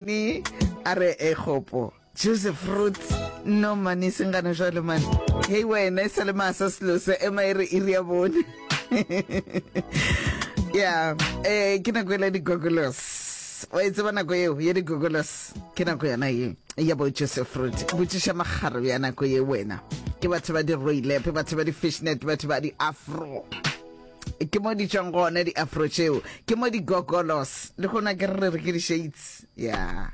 Ni a re ekgopo juice fruit no mane se ngane jwale mane hei wena e sa le masa selosa ema e re iri ya bone ya eh ke nako ele digogolos wa e tseba nako eo ya digogolos ke nako yana ye ya bo juice fruit botšiša magaro ya nako ye wena ke batho ba di roilepe batho ba di fishnet batho ba di afro ke mo di tšwang gone di-afro tšeo ke mo di-gogolos le gona ke re re ke di-shades ya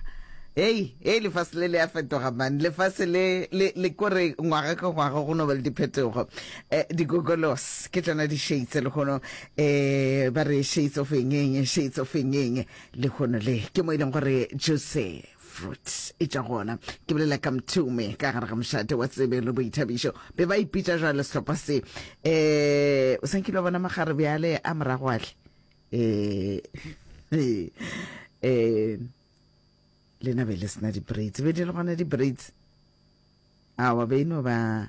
hei hei lefase le le a fetoga mane lefase le le le kore ngwaga ka ngwaga go no ba le diphetogo um di-gogolos ke tsona di-shades le gono um ba re shades of engeng shades of engeng le gono le ke mo e leng gore jose fruits e tša gona ke bolela ka mthume ka gare ga mošate wa tsebe le boithabišo be ba ipitša jwale sehlopha se um o sankile wa bona magare bjale a morago ahle um um lena be le sena di-braids be di le gona di-braids awa be e no ba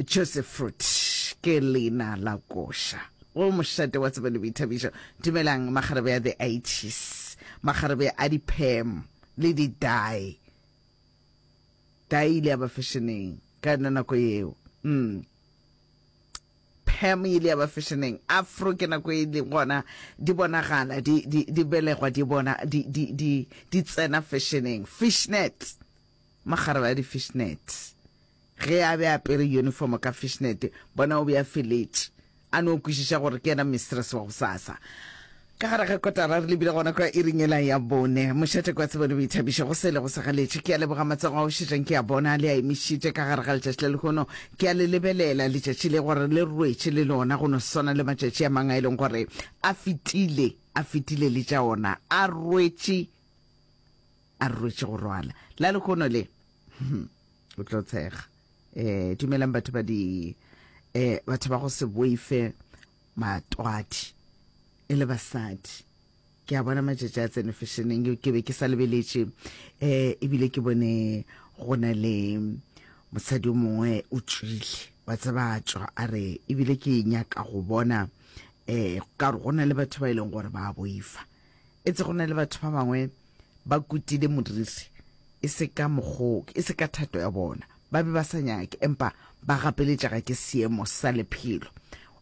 Joseph Fruit ke leina la koša go mošate wa tsebo le boithabišo dumelang magarebe a the itis magarebe a diphem le didae dae ile ya ba fešeneng ka yona nako eo mm. phem ile ya ba fešeneng afro ke nako e le gona di bonagala di, di, di belegwa di bona di, di, di, di tsena fešeneng fishnet Makgarebe a di-fishnet. Ge a be a apere yunifomo ka fishnet, bona o be a feletše a no kwešiša gore ke yena mistress wa gosasa. Ka gare ga kotara re lebile gona kwa iring yela ya bone. Mošate kwa tsebo le boithabišo go sele go segaletše. Ke a leboga matsogo a ošetšang ke a bona a le a emišitše ka gare ga letšatši la lehono. Ke a le lebelela letšatši le gore le rwetše le lona go no swana le matšatši a mang a e leng gore a fetile, a fetile le tša ona a rwetše a re rwetše go rwala la lehono le hmm, o tlo tshega um dumelang batho ba di um batho ba go se boife matwadi e le basadi ke a bona matšatši a tsene fashionneng eo ke be ke sa lebeletše um ebile ke bone go na le mosadi o mongwe o tswile wa tseba tswa a re ebile ke nyaka go bona um ka gore go na le batho ba e leng gore ba boifa Etse go na le batho ba bangwe ba kutile modiri, e se ka mogoke, e se ka thato ya bona. Ba be ba sa nyake, empa ba gapeletšega ke seemo sa lephelo.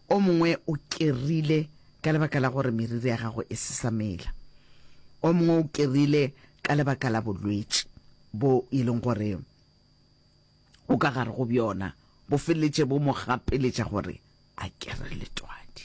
O mongwe o kerile ka lebaka la gore meriri ya gagwe e se sa mela. O mongwe o kerile ka lebaka la bolwetši bo e leng gore o ka gare go bjona bo feleletše bo mo gapeletša gore a kere letwadi.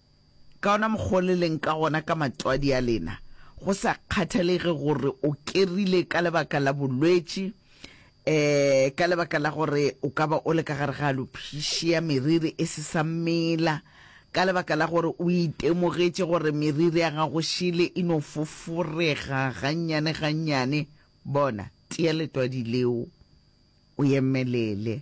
Ka ona mokgwa o le leng ka gona ka matswadi a lena, go sa kgathalege gore o kerile ka lebaka la bolwetši, um ka lebaka la gore o ka ba o le ka gare ga alopishia, meriri e se sa mela, ka lebaka la gore o itemogetše gore meriri ya gago šele e no foforega gannyane-gannyane, bona, tia letwadi leo, o emelele.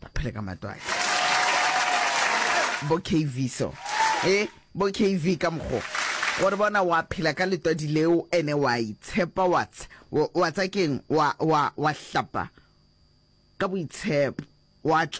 ba phele ka matwatši bo kv so e bo kv ka mokgo gore bona wa phela ka letwadi leo ene wa itshepa wa tsa keng wa hlapa ka boitshepo wa